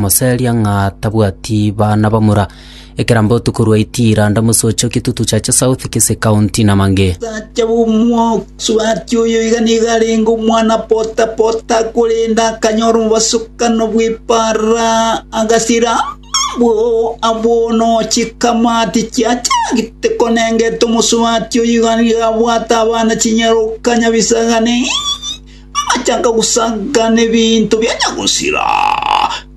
moseria ng'a tabwati bana bamura, ekera mbotu korwa Itiira, ndamosoche Kitutu Chache South, Kisii County na mang'e. Omosacha bw'omosubati oyo iga nigo arenge omwana pota-pota, korende akanyora obosokano bw'eparara, agasira abwo abwo nochi kamati chiachagete konengeta omosubati oyo iga nigo abwate abana chinyaroka nyabisaga ne Agachaka gosagana ebinto biacha gosira,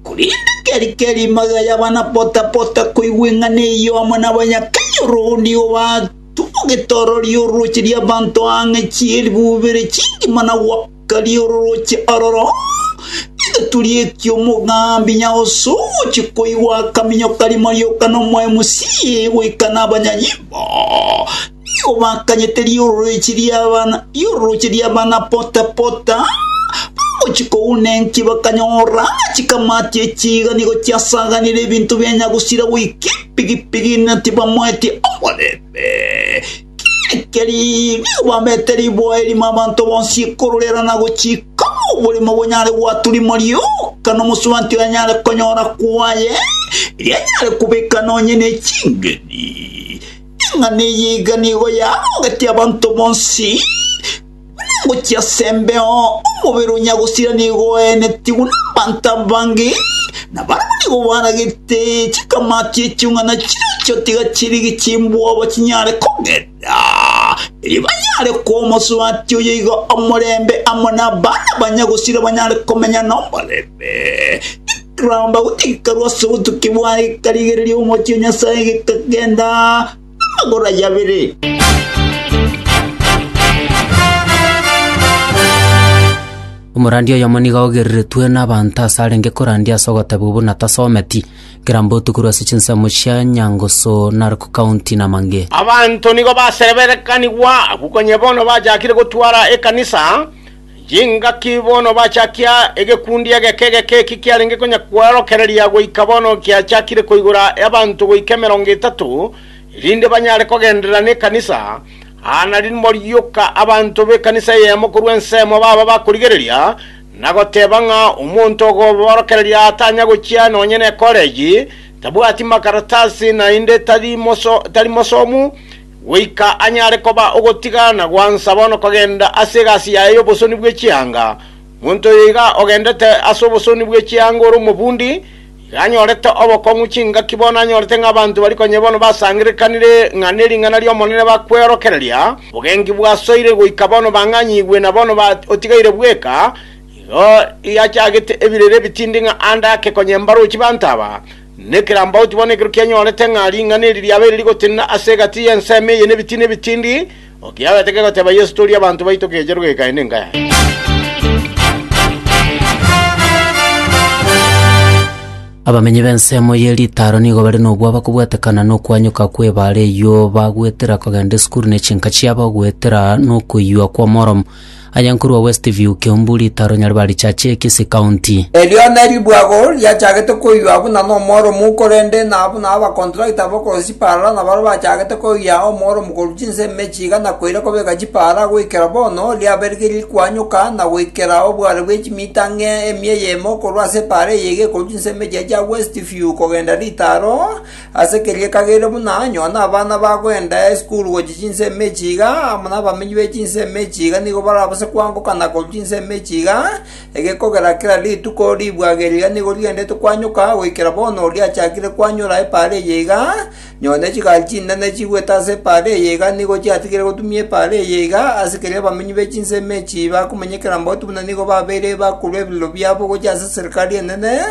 korende keri keri magega y'abana pota-pota koigwa eng'ana eyio amo n'abanyakenya ororo nigo batumogete ororio orooche ri'abanto ang'e chielfu ibere chingima na goakaria orooche ororo. Egeturi ekio omogambi Nyaoso ogochia koigwa akaminyoka rimo rioka nomoemusie goika nabanyanyimbo. Obakanyete riororeche ri'abana, riororeche ri'abana pota pota, bagochia kouna enki bakanyora chikamati echi iga nigo chiasaganire ebinto bia nyagusira goika epigipigi na tibamoeti omorembe. Kiekeri nigo babete riboa erimo abanto bonsi ekororera na gochika oborimo bonyare gwatua rimo rioka nomosubati onyare konyora kwaye, eria anyare kobeka nonye ne chingeni. Eng'ana eye iga nigo yagogetie abanto bonsi, buna ngochia ase embeo, omobere o nyagosira nigo oenetigwe nabaanto abange, na barabwo nigo baragete chikamati echiung'ana chiacho tiga chirigi chimboba chinyare kogenda, erio banyare koa omosubati oyo iga omorembe amo nabana ba nyagosira banyare komenya nomorembe. Ramba gochika rwase obotuki bwaye ekarigereria omochie o Nyasae gekagenda amagoro aye abere. Omorandia oyomo nigo aogereretwe n'abanto ase arenge korandia ase ogoteba obo natasometi, kera mbotuko korwa ase chinsemo chia Nyangusu, Narok County na Mange. Abanto nigo basereberekanigwa abwo konya bono bachakire gotwara ekanisa Chingaki bono bachakia egekundi egeke egeke eki kiarenge konya kweorokereria goika bono giachakire koigora abanto goika emerongo etato, erinde banyare kogenderera nekanisa, aa nari morioka abanto b'ekanisa eyemo korwa ensemo baba bakorigereria na goteba ng'a omonto ogobaorokereria atanya gochia nonye nekoreji, tabwati makaratasi naende tari mosomu, Goika anyare koba ogotigana gwansa bono kogenda ase egasi yaye y'obosoni bwe chianga. Monto oyo iga ogendete ase obosoni bwe chianga ore omobundi, iga anyorete obokong'u chingaki bono anyorete ng'a abanto baria konya bono basangererekanire ng'a nering'ana ri'Omonene bakweorokereria, obogenki bwasoire goika bono bang'anyigwe na bono ba otigaire bweka, igo yachagete ebirere ebitindi ng'a ande ake konya embarochi banto aba, Nekerambauti bono ekero kianyorete ng'a ring'ana eri riabeire rigotenena ase egati y'ensemo eye nebitina ebitindi, o kiagete kegoteba Yeso tori abanto baito keecha rogeka aye nenka yaye. Abamenyi b'ensemo ye Litaro nigo bare nobwaba kobwatekana nokwanyoka kw'ebaare eyio, bagwetera kogenda esukuru ne chinka chiabo, goetera nokoiywa kw'omoromo. Aye nkorwa West View, Kiambu, Ritaro, Nyaribari, Chache, Kisii County. Erio neribuago riachagete koiywa buna nomoromu, korende na buna abakontractor bokorosia chipaara nabaro bachagete koiyia omoromu korwa chinsa emechie iga na koira kobeka chipaara goikera bono, riaberigiri rikwanyoka na goikera obware bwe chimita ng'a emia eyemo korwa ase epaara eye iga ekorwa chinsa emechie chia West View kogenda Ritaro, Ase keria kagere buna anyone abana bagwenda esukuru gochia chinsemo echi iga, amo nabamenyi be chinsemo echi iga nigo barabase koangokana korwa chinsemo echi iga, egekogera kera rituko ribwageri riria nigo rigendete koanyoka goikera bono riachakire koanyora epaara eye iga, nyone chigari chinene chigwete ase epaara eye iga nigo chiatigire gotumia epaara eye iga, ase keria abamenyi be chinsemo echi bakomenyekera mbagotu buna nigo babeire bakorwa ebirero biabo gochia ase eserikari enene,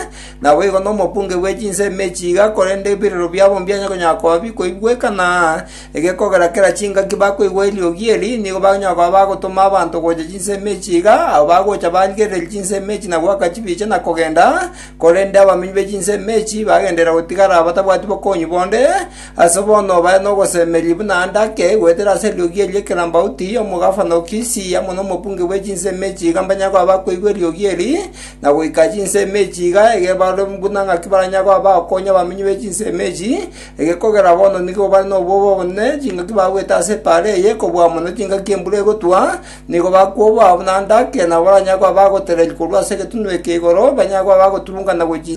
Naboigo nomokunge bwe chinsemo ime echi iga, korende ebirero biabo mbianya konyara koba bikoigweka, na egekogera kera chingaki bakoigwa eriogi eri, nigo bakonyara koba bagotoma abanto gocha chinsemo echi iga, abo bagocha barigereria chinsemo echi na goaka chibicha na kogenda, korende abaminyi be chinsemo echi bagenderera gotigara batabwati bokong'u bonde. Ase bono bare nogosemeria buna ande ake, goetera ase eriogi eri ekerambauti, omogafano o Kisii amo nomokunge bwe chinsemo echi iga mbanyare koba bakoigwa eriogi eri, na goika chinsemo echi iga egebarwe buna ng'aki baranyare koba bakonya abamenyi be chinsemo echi, egekogera bono nigo bare nobobe obonene, chingaki bagwete ase epaara eye kobua mono chingaki embura egotwa, nigo bakoboa buna ndake, nabo baranyare koba bagotereria korwa ase egetunwa eke igoro, banyare koba bagotubungana gochia.